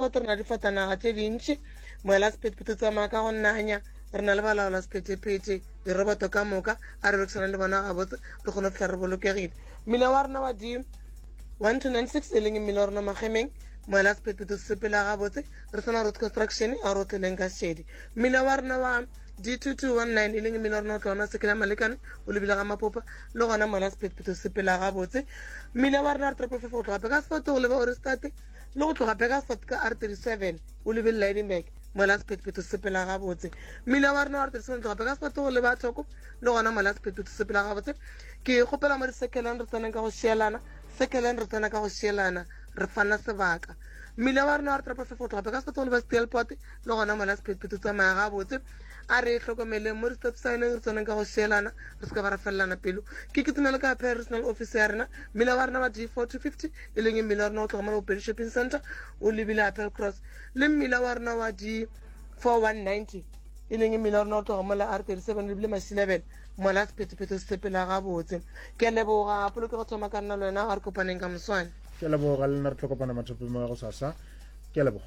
Re na le difatanaga tše dintši, moela sephethephethe o tsamaya ka go nanya, re na le balaola sephethephethe, diroboto ka moka, a re berekisana le bona gabotse, re kgone go fihla re bolokegile. Mmila wa rena wa di 1296 e leng mmila wa rona magemeng, moela sephethephethe o sepela gabotse, re sena road construction, a re o tleleng ka šedi. Mmila wa rena wa D2219 e leng mmila wa rona o tlaona sekela malekane o lebile ga mapopa le gona moela sephethephethe o sepela gabotse. Mmila wa rena re tropofefo go tloga pe ka sefoto go leba orestate le go tloga begasfort ka r 37 o lebe lidenburg mola sephethephetho sepela gabotse mmila wa rena wa re tirisaneng tloga beka sepato go leba thoko le gona mola sephethephetho sepela gabotse ke kgopela mo disekelan re tseneng ka go šielana sekelan re tsena ka go šielana re fana sebaka mmila wa rena wa re toropo fefo tloga beka sepato go leba steelport le gona mola sephethephetho tsamaya gabotse a re hlokomeleng mo di-stop signeng re tseneng ka go šielana re se ka ba ra felelana pelo ke kitimele ka personal office ya rena mmila wa rena wa d four two fifty e leng mmila wa rena wa tlhokomela bopedi shopping center o lebile apel cross le mmila wa rena wa di 4190 e leng mmila wa rena wa tlhokomela r 37 o lebile masilebele mola sephethephethe se sepela gabotse ke leboga polokego thoma ka nna le wena a re kopaneng ka moswane ke leboga le nna re tlhokopana mathopeng wa go sasa ke leboga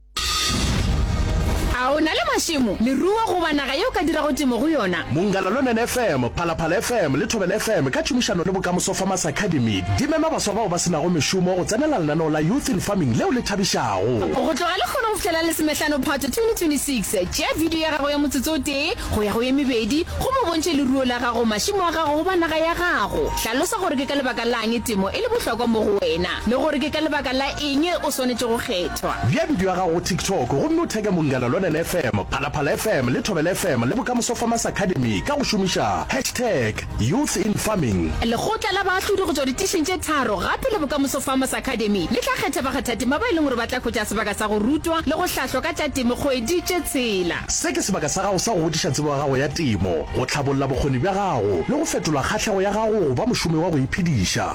A o na le mašemo, leruo goba naga ye o ka dirago temo go yona? Mongalaluonen FM, Phalaphala FM le Thobela FM ka tšhomišano le Bokamoso Farmers Academy di mema baswa bao ba se nago mešomo go tsenela lenaneo la Youth in Farming leo le thabišago. Go tloga lehono go fihlela Lesomehlano Phato 2026, tšea bidio ya gago ya motsotso o tee go ya go ye mebedi gomme o bontšhe leruo la gago, mašemo a gago goba naga ya gago. Hlalosa gore ke ka lebaka la'ng temo e le bohlokwa mo go wena le gore ke ka lebaka la eng o swanetše go kgetha. Bea bidio ya gago go TikTok gomme o theke Mongana Lonene FM, Phalaphala FM le Thobela FM le Bokamoso Farmers Academy ka go šomiša hashtag YouthInFarming. Lekgotla la baahlodi go tšwa ditišing tše tharo gape le Bokamoso Farmers Academy le tla kgetha bakgathatema ba e leng gore ba tla hwetša sebaka sa go rutwa le go hlahlwa ka tša temo kgwedi tše tshela. Se ke sebaka sa gago sa go godiša tsebo ya gago ya temo, go hlabolla bokgoni bja gago le go fetola kgahlego ya gago go ba mošomi wa go iphediša.